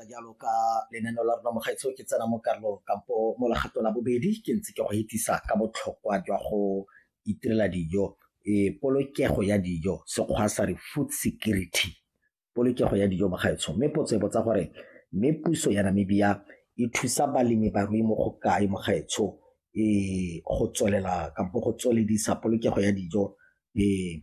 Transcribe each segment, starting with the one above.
jalo ka lenaneo la rona mogaetsho ke tsena mo karolong kampo mo legato la bobedi ke ntse ke go etisa ka botlhokwa jwa go itirela dijo e polokego ya dijo sekgwa sa re food security polokego ya dijo mogaetsho mme potso e botsa gore mme puso ya namibia e thusa balemi barui mo go kae mogaetsho e go tswelela kampo go tsweledisa polokego ya dijo e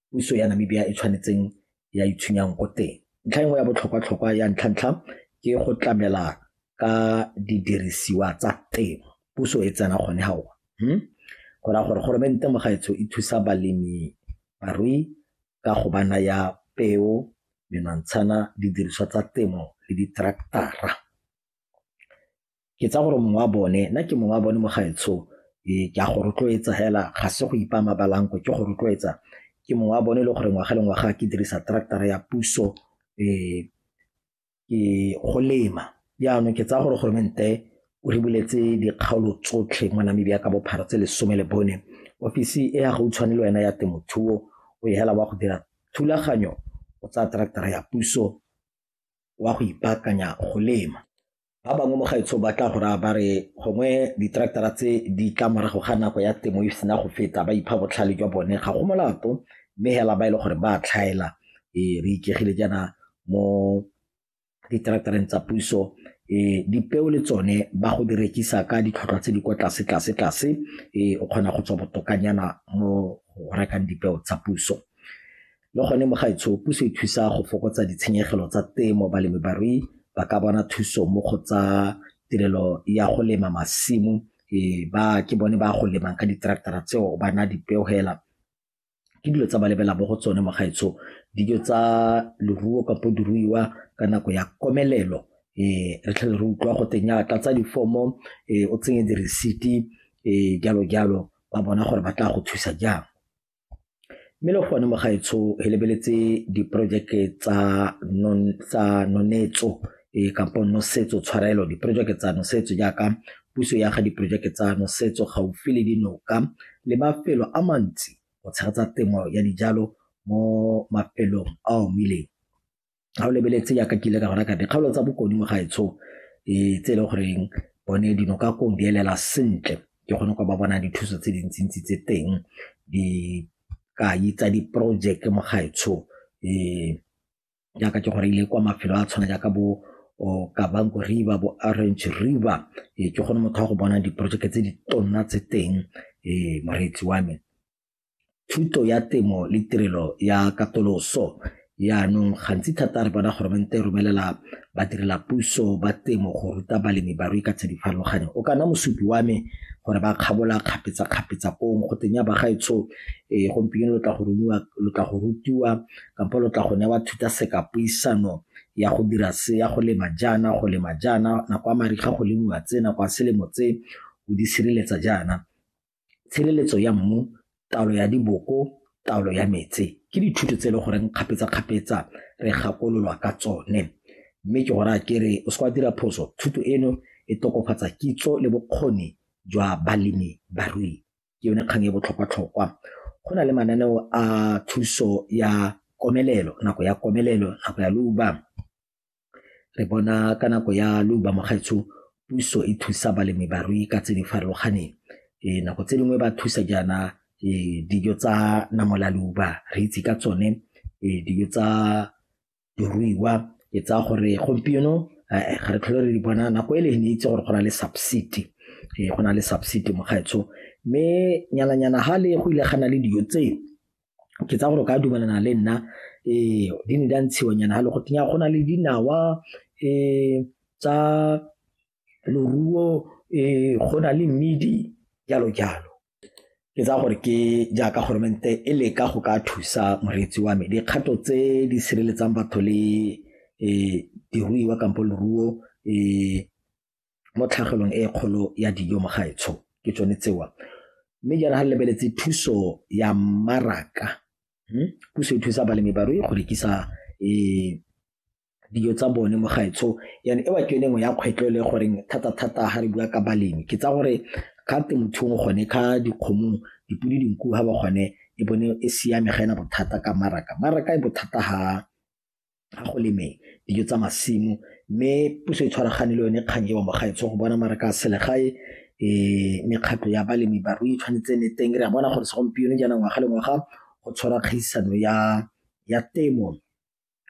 puso ya Namibia e tshwanetseng ya itshwenyang ko teng ntlha e nngwe ya botlhokwa-tlhokwa ya ntlha-ntlha ke go tlamela ka didirisiwa tsa temo puso e tsena gone ga ona hmm? go raya gore goromente mo gaetsho e thusa balemi barui ka go ba naya peo menwantshana didiriswa tsa temo le ditraktara ke tsaya gore mongwe wa bone nna ke mongwe wa bone mo gaetsho ee, ke a go rotloetsa fela ga se go ipa mabalanko ke go rotloetsa ke mongwe wa bone e le gore ngwaga le ngwaga ke dirisa tractara ya puso um ke go lema jaanong ke tsaya gore goromente o re buletse dikgaolo tsotlhe mo namibia ka bophara tse lesome le bone ofisi e ya gautshwane le wena ya temothuo o e hela wa go dira thulaganyo o tsaya tractara ya puso wa go ipaakanya go lema Ba bangwe mo gaetsho ba tla go raya ba re gongwe diteraktara tse di tla morago ga nako ya temo e sena go feta ba ipha botlhale jwa bone ga go molato mme hela ba e le gore ba tlhaela e re ikegile jaana mo diteraktareng tsa puso e dipeo le tsone ba go di rekisa ka ditlhotlhwa tse di kwa tlase tlase tlase e o kgona go tswa botokanyana mo go rekang dipeo tsa puso Le gone mo gaetsho puso e thusa go fokotsa ditshenyegelo tsa temo balemibarui ba ka bona thuso mo go tsa tirelo ya go lema masimo e ba ke bone ba go lemang ka di-tractor-a tseo ba na dipeo hela ke dilo tsa ba lebela mo go tsone mo gaetsho dijo tsa leruo kapo diruiwa ka nako ya komelelo um re tlhele re utlwa go teng ya tlatsa difomo um o tsenye diresiti um jalo jalo ba bona gore ba tla go thusa jang Mme le gone mo gaetsho re lebeletse diporojeke tsa nonetso kampo nosetso tshwarelo diporojeke tsa nosetso jaaka puso ya ga diporojeke tsa nosetso gaufi le dinoka le mafelo a mantsi go tshegetsa temo ya dijalo mo mafelong a omileng. ga o lebeletse yaka ke ile ka gona ka dikgaolo tsa bokone mo gaetsho e tse e le goreng bone dino ka kong di elela sentle ke kgone go ba bona dithuso tse dintsintsi tse teng di ka itsa diporojeke mo gaetsho um jaaka ke gore ile kwa mafelo a tshwana jaaka bo kabanko river bo orange river e ke kgone motho wa go bona diporojeke tse di tonna tse teng um moreetsi wa me thuto ya temo le tirelo ya katoloso Jaanong gantsi thata re bona goromente e romelela badirela puso ba temo go ruta balemi barui ka tse di farologaneng. O kana mosupi wa me gore ba kgabola kgapetsa-kgapetsa pong go teng ya bagaetsho e gompieno lo tla go rumiwa lo tla go rutiwa kampo lo tla go newa thuta seka puisano ya go dira se ya go lema jaana go lema jaana nako ya mariga go lemiwa tse nako ya selemo tse o di sireletsa jaana tshireletso ya mmu, taolo ya diboko, taolo ya metse ke dithuto tse e le goreng kgapetsa-kgapetsa re gakololwa ka tsone mme ke go raya ke re o se ka dira phoso thuto eno e tokafatsa kitso le bokgoni jwa balemi barui ke yone kgang e botlhokwa-tlhokwa go na le mananeo a thuso ya komelelo, nako ya komelelo, nako ya leuba. Re bona ka nako ya leuba mogaetsho puso e thusa balemi barui ka tse di farologaneng e nako tse dingwe ba thusa jaana e dijo tsa namola leuba re itse ka tsone e dijo tsa diruiwa ke tsaya gore gompieno eh, ga re tlhole re di bona nako e le ne itse gore go na le subsidy eh, go na le subsidy mogaetsho mme nyana-nyana ga le go ile gana le dijo tseo ke tsaya gore o ka dumelana le nna ee di ne di a ntshiwanyana ga le go tenya go na le dinawa um tsa loruo um go na le mmidi jalo jalo ke tsaya gore ke jaaka goromente e leka go ka thusa moreetsi wa me dikgato tse di sireletsang batho le um diruiwa kampo leruo um mo tlhagelong e kgolo ya dijo mo gaetsho ke tsone tsewa mme jaana ga re lebeletse thuso ya mmaraka hmm? puso e thusa balemi barui go rekisa um dijo tsa bone mo gaetsho yane e wa ke yone nngwe ya kgwetlho le goreng thata-thata ga re bua ka balemi ke tsa gore ka temothuong gone ka dikgomong dipodi dinku ga ba gone e bone e siame ga ena bothata ka maraka maraka e bothata ga ga go leme dijo tsa masimo mme puso e tshwaragane le yone kgang eo mo gaetsho go bona mara ka selegae um mekgatlho ya balemi barui e tshwanetse ne teng re a bona gore segompieno jaana ngwaga le ngwaga go tshwara kgaisano ya temo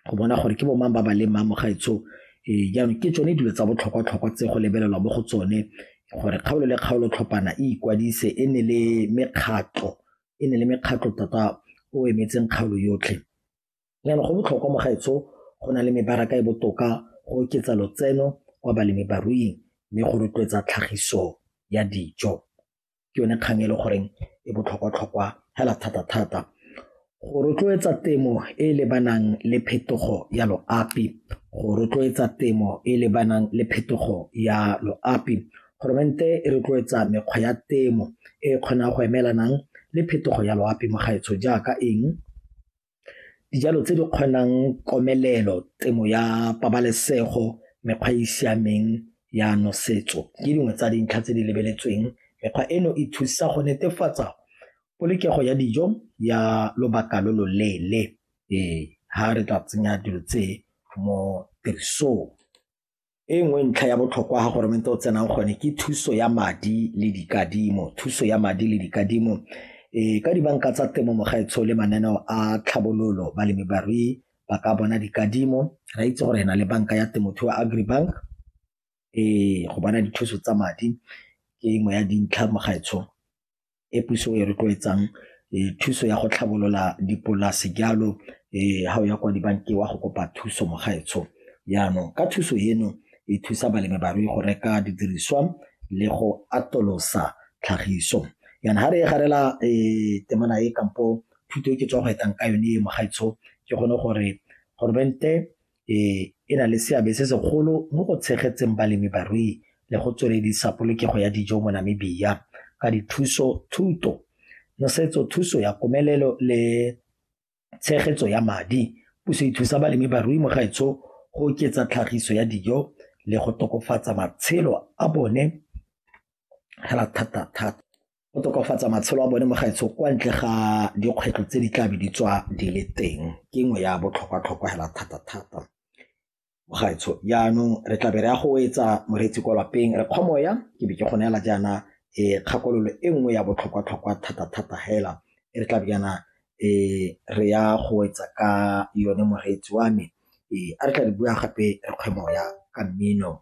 go bona gore ke bo mang ba ba lemang mo gaetsho um eh, jaanong ke tsone dilo tsa botlhokwa-tlhokwa tse go lebelelwa mo go tsone gore kgaolo le kgaolo tlhopana e ikwadise e ne le mekgatlho e ne le mekgatlho tota o emetseng kgaolo yotlhe Jaanong go botlhokwa mo gaetsho go na le mebaraka e botoka go oketsa lotseno kwa balemibaruing mme go rotloetsa tlhagiso ya dijo. Ke yone kgang e le goreng e botlhokwa-tlhokwa hela thata-thata. Go rotloetsa temo e e lebanang le phetogo ya loapi, go rotloetsa temo e e lebanang le phetogo ya loapi. e rotloetsa mekgwa ya temo e e kgonang go emelanang le phetogo ya loapi mo gaetsho jaaka eng? dijalo tse di kgonang komelelo, temo ya pabalesego, mekgwa e e siameng ya nosetso ke dingwe tsa dintlha tse di lebeletsweng. Mekgwa eno e thusa go netefatsa polokego ya dijo ya lobaka lo lo leele fa re ka tsenya dilo tse mo tirisong. e nngwe ntlha ya botlhokwa ga goromente o tsenang gone ke thuso ya madi le dikadimo thuso ya madi le dikadimo e ka dibanka tsa temo mogaetsho le mananeo a tlhabololo balemi barui ba ka bona dikadimo ra itse gore na le banka ya temothuo agribank e go bona dithuso tsa madi ke engwe ya dintlha mogaetsho e puso e rotloetsang thuso ya go tlhabolola dipolase jalo ga o ya kwa dibankeng wa go kopa thuso mo gaetsho jaanong ka thuso eno e thusa balemi barui go reka didiriswa le go atolosa tlhagiso yana ga re e garela temana e kampo thuto e ke tswa go etang ka yone mo gaetsho ke gone gore goromente e e na le seabe se segolo mo go tshegetseng balemi barui le go tsweledisa polokego ya dijo mo Namibia ka dithuso thuto nosetso thuso ya komelelo le tshegetso ya madi puso e thusa balemi barui mo gaetsho go oketsa tlhagiso ya dijo le go tokafatsa matshelo a bone hela thata thata. go tokafatsa matshelo a bone mo gaetsho kwa ntle ga dikgwetlho tse di tla be di tswa di le teng ke nngwe ya botlhokwa-tlhokwa hela thata-thata mo gaetsho jaanong re tla be re ya go etsa moreetsi kwa lapeng re kgwamoya ke be ke go neela jaana e kgakololo e nngwe ya botlhokwa-tlhokwa thata-thata hela e re tla be jaana e re ya go etsa ka yone moreetsi wa me e a re tla re bua gape re kgwemoya ka mmino